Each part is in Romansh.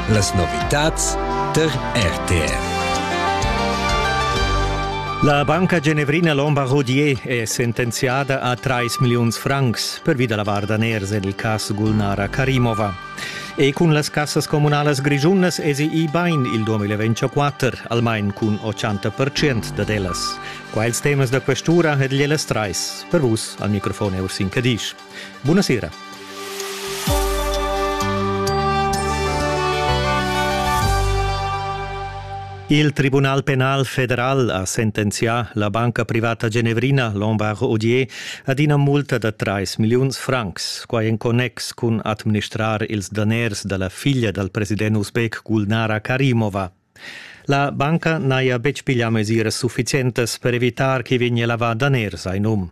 Las novitads tar RTR. La banca genevrina Lombard Rodier è sentenziada a 3 milliuns francs pervi da la var daners en il cas Gulnara Karimova. E cun las cassas comunalas grischunas esi i bain il 2024, almain cun 80% dad ellas. Qua ils temas da questura ed gliellas trais. Per vus al microfon è Ursin Cadisch. Buna sera. Il Tribunal penal federal ha sentenzià la banca privata genevrina Lombard Odier ad ina multa da 3 milliuns francs, quai en connex cun administrar ils daners da la figlia dal president uzbek Gulnara Karimova. La banca n'haja betg piglià mesiras suffizientas per evitar ch'i vegnia lavà daners a in um.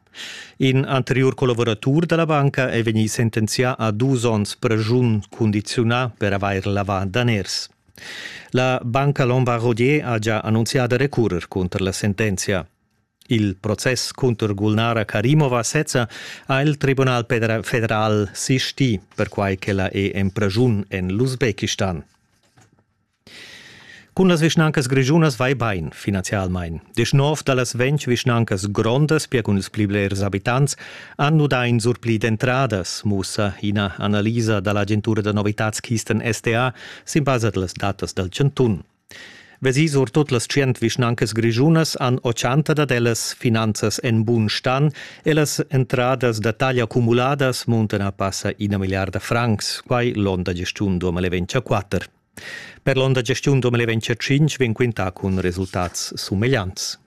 In anteriur collaboratur da la banca è vegnì sentenzià a dus onns pregiun cundiziunà per avair lavà daners. La banca Lombard-Rodier ha già annunzià da recurrer cunter la sentenzia. Il process cunter Gulnara Karimova sezza ha il Tribunal federal sistì, perquai che la è en pregiun en l'Usbekistan. Cun las vischnancas grischunas vai bain, finanzialmain. Deschnov da las ventg vischnancas grondas, pia cun ils pli blers abitants, han nudà in surpli d'entradas, mussa ina analisa da l'agentura da novitads Kisten SDA sin basa da las datas dal chantun. Vesì sur tut las tschient vischnancas grischunas han ochanta dad ellas finanzas en bun stan e las entradas da taglia cumuladas muntan a passa ina milliarda francs, quai l'onda gestiun 2024. Per l'onda gestiun 2025 vegn quintà cun resultats sumegliants.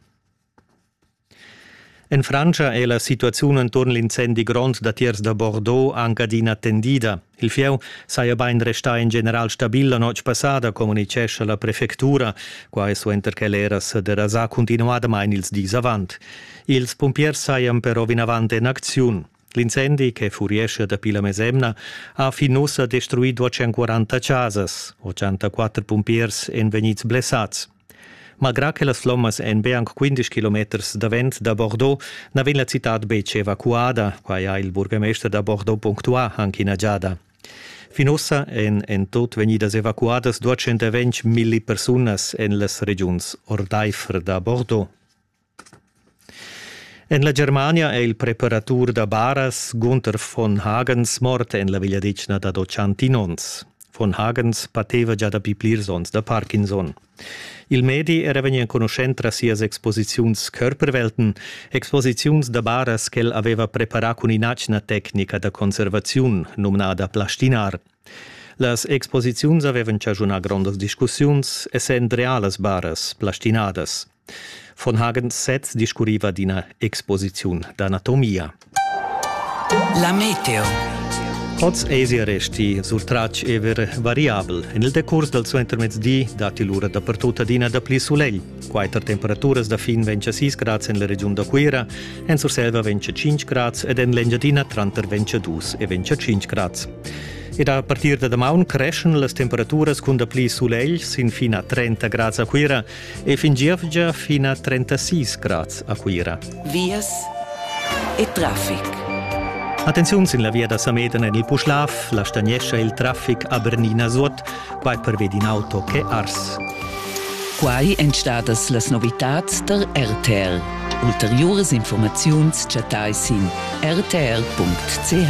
En Frantscha è la situaziun enturn l'incendi grond datiers da Bordeaux anc adina tendida. Il fieu saja bain restà in general stabil la notg passada, communitgescha la prefectura, quai suenter che l'era sa derasà cuntinuadamain ils dis avant. Ils pumpiers sajan però vinavant en acziun. L'incendi, che furiescha dapi la mesemna, ha fin ussa destruì 240 chasas. 84 pumpiers èn vegnids blessads. Malgrà che las flommas èn be anc 15 kilometers davent da Bordeaux, na vegn la citad betg evacuada. Quai ha il burgemester da Bordeaux punctuà anche ina giada. Fin ussa èn en tut vegnidas evacuadas 220 milli persunas en las regiuns ordaifer da Bordeaux. En la Germania è il preparatur da baras Gunther von Hagens mort en la vegliadetgna dad otschantin onns. Von Hagens pateva gia dapi plirs onns da Parkinson. Il medi era vegnì enconuschent tras sias exposiziuns Körperwelten, exposiziuns da baras ch'el aveva preparà cun in'atgna tecnica da conservaziun, numnada plastinar. Las exposiziuns avevan chaschunà grondas discussiuns, essend realas baras plastinadas. Von Hagen sez discurriva d'ina exposiziun d'anatomia. La meteo. Oz èsi resti surtratg ever variabel. En il decurs dal suentermezdi datti lura dapertut adina dapli sulegl. Quatter temperaturas da fin vegn a 6 grads en la regiun da Cuira, en Surselva vegn a 5 grads ed en l'Engiadina tranter vegn a 2 e vegn a 5 grads. Ed a partir da damaun creschan las temperaturas cun dapli sulegl sin fin a 30 grads a Cuira e fin gievgia fin a 36 grads a Cuira. Vias e traffic. Attenziun sin la via da Sameden en il Puschlav, la stagnescha il traffic a Bernina Suot, quai pervedi in auto che ars. Quai èn stadas las novitads da RTL. Ulteriuras informaziuns chattai sin rtl.ch.